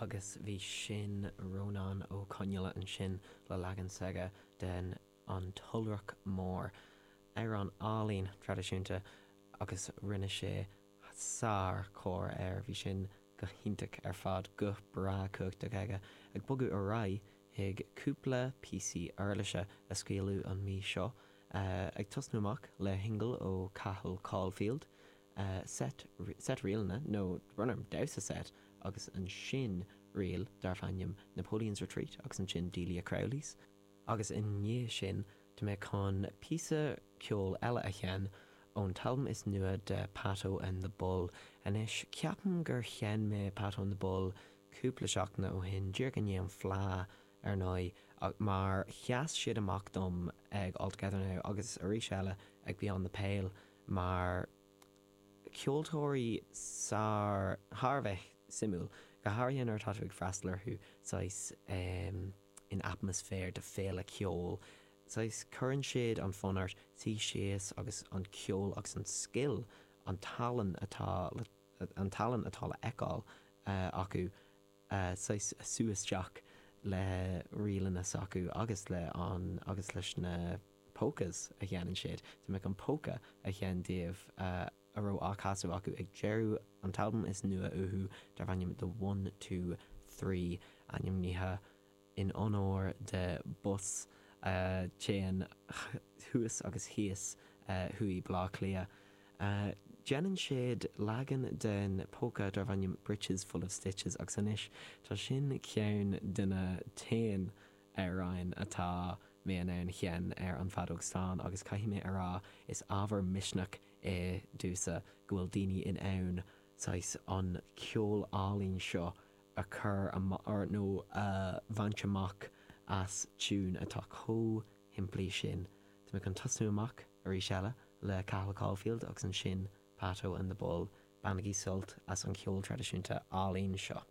agus bhí sin Rónán Ó Conghaile ansin le leagan s'aige den 'An tIolrach Mór', amhrán álaínn traidisiúnta, agus rinne sé sár chóir air, bhí sin go hiontach ar fad, guth breá cumhachtach aige. Ag bogadh ar aghaidh chuig cúpla píosaí uirlise a scaoileadh an mí seo, ag tosnú amach le singil ó Cathal Caulfield, seit, set, ríleanna, nó roinnt damhsa seit, agus ansin ríl darbh ainm Napoleon's Retreat, agus ansin Delia Crowley's, agus i ndiaidh sin tá mé chun píosa ceoil eile a sheinn ón t-albam is nua de Pato and the Bull. Anois, ceapaim gur sheinn mé Pato and the Bull cúpla seachtaine ó shin, díreach i ndiaidh an fleadh, ar ndóigh, mar sheas siad amach dom ag All Together Now, agus arís eile ag Beyond the Pale, mar ceoltóirí sár, thar a bheith suimiúil, go háirithe nuair atá tú ag freastal orthu saghas in atmaisféar de féile ceoil, saghas cuireann siad an fonn ort suí síos agus an ceol agus an scil, an tallann atá le, an tallann atá le fheiceáil acu, saghas sú isteach le ríleanna s'acu agus le an agus leis na polkas a sheinneann siad. Tá mé chun polka a sheinn díobh a raibh á chasadh acu ag deireadh an t-albam is nua uathu darb ainm The One, Two, Three, ainmnithe in onóir de bus a théann thuas agus thíos thuaidh Bleá Cliath. Déanann siad leagan den polka darbh ainm Breeches Full of Stitches agus anois tá sin ceann de na t-aon amhráin atá mé in ann sheinn ar an feadóg stáin agus caithfidh mé a rá is ábhar misneach é domhsa go bhfuil daoine in ann saghas an ceol álainn seo a a chur amach nó a bhaint amach as tiúin atá chomh simplí sin. Tá mé chun tosnú amach, arís eile, le Cathal Caulfield agus ansin Pato and the Bull. Bainigí sult as an cheol traidisiúnta álainn seo.